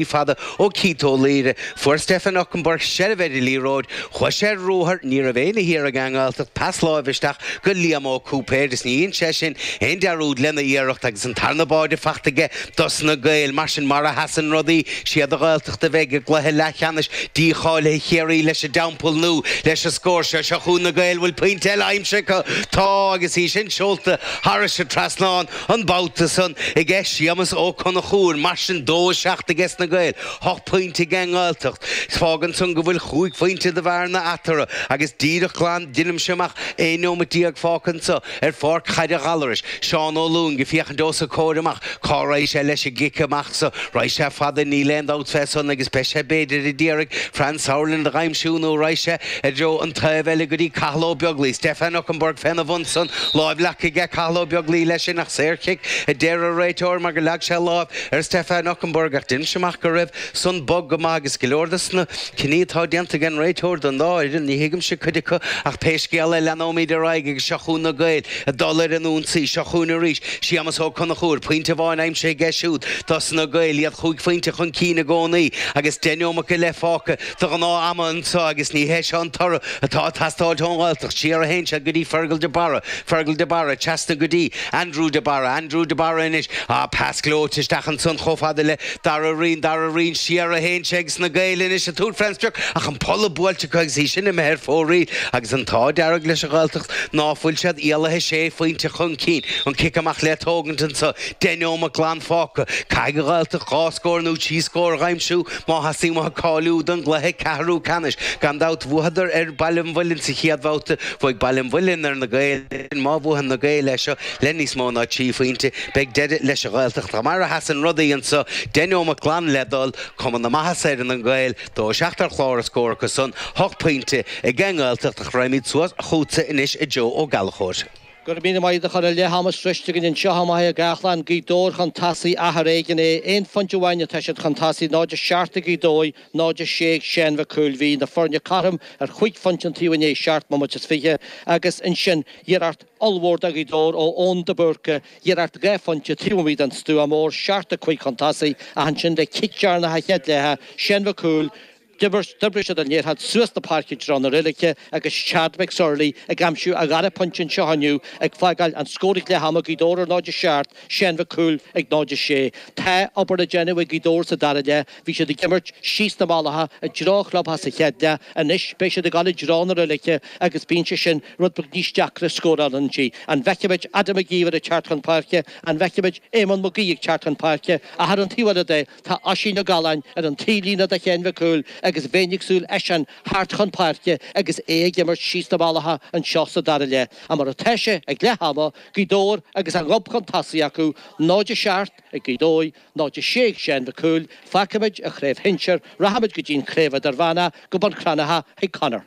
Ní fada ó Keith Ó Laoire, fuair Stefan Okunbor seilbh ar an liathróid, chuaigh sé ar ruathar, ní raibh éinne thiar ag an nGaeltacht, pas láimhe isteach go Liam Ó Cúipéir is ní dhein sé sin aon dearúd lena iarracht agus an tarna báide faighte aige dosna Gaeil. Mar sin mar a sheasann rudaí, is iad an Ghaeltacht a bheidh i gcluiche leathcheannais dícháilithe Chiarraí leis an dTeampall Nó leis an scór seo. Seo chugainn na Gaeil, an bhfuil pointe eile aimsithe acu. Tá agus í sin seolta thairis an trasnán. An babhta san, age Séamas Ó Conchúir, mar sin, dó a seacht ages na Gaeil, hocht pointe ag an nGaeltacht. Fágann san go bhfuil chúig phointe de bhearna eatarthu agus díreach glan deinimse amach aon neomat déag fágtha anso ar pháirc Chaide Ghallarais, Seán Ó Lúing ag féachaint os a chomhair amach cá raghaidh sé leis an gcic amach so. Raghaidh sé fada, níl aon dabht fé san, agus beidh sé, b'fhéidir, ag iarraidh Franz Sauerland a dh'aimsiú nó raghaidh sé, I dtreo an taobh eile go dtí Cathal Ó Beaglaoich. Stefan Okunbor féna bhun san. Lámh leagtha ag Cathal Ó Beaglaoich leis sin ach saorchic, a deir an réiteoir mar gur leag sé láimh ar Stefan Okunbor ach deinimse amach go raibh san bog go maith agus go leor de sna cinní atá déanta ag an réiteoir don dá fhoireann, ní thuigimse cuid acu ach pé scéal é leanóimid ar aghaidh agus seo chugainn na Gaeil ag dul ar an ionsaí. Seo chugainn arís Séamas Ó Conchúir. Pointe amháin aimsithe aige siúd dos na Gaeil, iad chúig phointe chun cinn i gcónaí agus deich neomat go leith fágtha. de ghnáth-am anso agus ní hé seo an toradh atá ag teastáilt ón nGaeltacht. Siar a théann sé go dtí Fergal de Barra, Fergal de Barra, trasna go dtí Andrew de Barra, Andrew de Barra anois, ah, pas gleoite isteach ansan chomh fada le Dara Reen, Dara Reen, siar a théann sé agus na Gaeil anois ag tabhairt fén sprioc ach an polla buailte acu agus í sin imithe ar fóraoil agus an t-ádh dearg leis an nGaeltacht ná fuil siad éalaithe sé phointe chun cinn. An cic amach le tógaint anso, deich neomat glan fágtha. Caithfidh an Ghaeltacht dhá scór nó trí scór a dh'aimsiú. Má theastaíonn uathu cáiliú don gcluiche ceathrú ceannais, gan dabht bhuafadar ar Bhaile an Mhuilinn sa chéad bhabhta, bhuaigh Baile an Mhuilinn ar na Gaeil ansin, má bhuann na Gaeil é seo le níos mó ná trí phointe, beidh deireadh leis an Ghaeltacht. Ach mar a sheasann rudaí anso, deich neomat glan le dul, cuma na maitheasa ar na Gaeil, dó a seacht ar chlár a scór acu san, hocht pointe ag an nGaeltacht, ach raghaimid suas chugatsa anois a Joe Ó Gallchóir. Gura míle maith agat a Chonaill, leath ama sroichte againn anseo, i Machaire Gathlán, Gaoth Dobhair chun tasaigh, ach ar éigean é, aon phointe amháin atá siad chun tasaigh, 0 a seacht ag Gaoth Dobhair, 0 a sé ag Seán Mhic Cumhaill. Bhí na foirne cothrom ar chúig phointe an taobh i ndiaidh seacht mbomaite is fiche, agus ansin iarracht ollmhór do Ghaoth Dobhair ó Eoin de Búrca, iarracht dhá phointe taobh amuigh den stua mór, seacht a cúig chun tasaigh, ach ansin le cic deireanach na chéad leithe Seán Mhic Cumhaill, D'oibrigh siad an liathróid suas na páirce i dtreo na reilige agus Chad McSorley ag aimsiú a dhara pointe anseo inniu, ag fágáil an scór ag leath ama Gaoth Dobhair ar 0 7, Seán Mac Cumhaill ag 0 6. Tá obair le déanamh ag Gaoth Dobhair sa dara leath. Bhí siad ag imirt síos na malacha i dtreo chlubtheach sa chéad leath. Anois beidh siad ag dul i dtreo na reilige agus bíonn sé sin rud beag níos deacra scóráil inti. An bhfeicfimid Adam McGeever ag teacht chun páirce? An bhfeicfimid Éamonn McGee ag teacht chun páirce? Ach ar an taobh eile de, Tá Oisín Ó Galláin ar an taobhlíne do Sheán Mhic Cumhaill agus bheinn ag súil eisean theacht chun páirce agus é ag imirt síos na malacha anseo sa dara leath ach mar atá sé ag leath ama, Gaoth Dobhair agus a ngob chun tosaigh acu, 0-7 ag Gaoth Dobhair, 0-6 ag Seán Mhic Cumhaill, fágfaimid an chraobh shinsir, rachaimid go dtí an Chraobh Idirmheánach, go Bun Cranncha chuig Conor.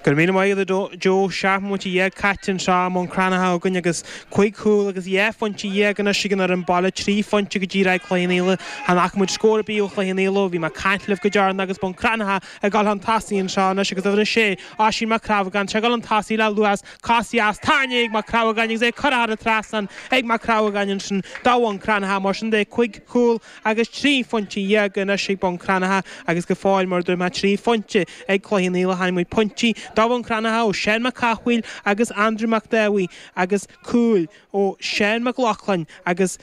Go raibh míle maith agat, a Joe. Seacht mbomaite dhéag caite anseo i mBun Cranncha againn agus cúig chúl agus dhá phointe dhéag anois ag muintir an bhaile, trí phointe go díreach ag Cloich Cheann Fhaola. Chan fhaca muid scór ar bith ó Chloich Cheann Fhaola ó bhí mé ag caint libh go deireanach agus Bun Cranncha ag dul chun tosaigh anseo anois agus uimhir a sé, Oisín Mac Crabhagáin, is é ag dul chun tosaigh le luas, cos dheas tarraingthe ag Mac Crabhagáin agus é curtha thar an trasnán ag Mac Crabhagáin ansin do Bhun Cranncha. Mar sin de, cúig chúl agus trí phointe dhéag anois ag Bun Cranncha agus go fóill mar a dúirt mé trí phointe ag Cloich Cheann Fhaola chonaic muid pointí do Bhun Cranncha ó Seán Mac Cathmhaoil agus Andrew Mac Dáibhidh agus cúil ó Sheán Mac Lochlainn agus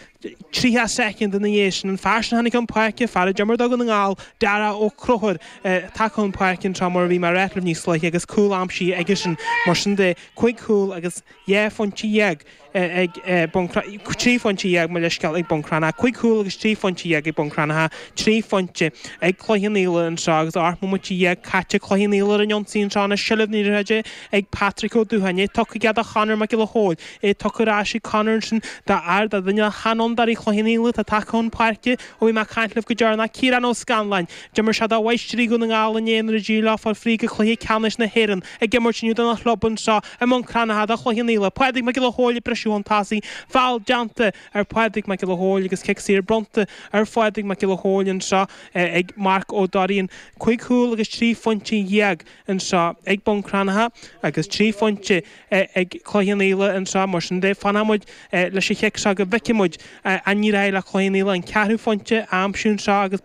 tríocha soicind ina dhiaidh sin an fear sin a tháinig chun páirce, fear a d'imir do Dhún na nGall, Dara Ó Conchúir tagtha chun páirce an tráth mar a bhí mé ag ráit libh níos luaithe agus cúl aimsithe aigesean mar sin de cúig chúl agus dhá phointe dhéag. ag bun crann, trí phointe dhéag, mo leithscéal, ag Bun Cranncha, cúig chúl agus trí phointe dhéag ag Bun Cranncha, trí phointe ag Cloich Cheann Fhaola an tráth agus ocht mbomaite dhéag caite Cloich Cheann Fhaola ar an ionsaí an tráthnóna seilbh na caide ag Patrick Ó Dúcháin é tugtha aige do Chonor Mac Giolla Chóill é tugtha ar ais ag Conor ansin d'fhear de duine de sheanfhondúirí Chloich Cheann Fhaola atá tagtha chun páirce ó bhí mé ag caint libh go deireanach Ciarán Ó Scanláin d'imir sé do Mháistrí Dhún na nGall i ndáiríre d'éirigh leo fáil fríd go Cluiche Ceannais na hÉireann ag imirt inniu dona chlub anseo i mBun Cranncha do Chloich Cheann Fhaola Pádraig Mac Giolla Chomhaill ag briseadh chun tosaigh, feall déanta ar Phádraig Mac Giolla Chomhaill agus cic saor bronnta ar Phádraig Mac Giolla Chomhaill anseo ag Mark Ó Doirín. Cúig chúl agus trí phointe dhéag anseo ag Bun Cranncha agus trí phointe ag Cloich Cheann Fhaola anseo mar sin de fanfaidh muid leis an chic seo go bhfeicfidh muid an n-éireoidh le Cloich Cheann Fhaola an ceathrú phointe a aimsiú anseo agus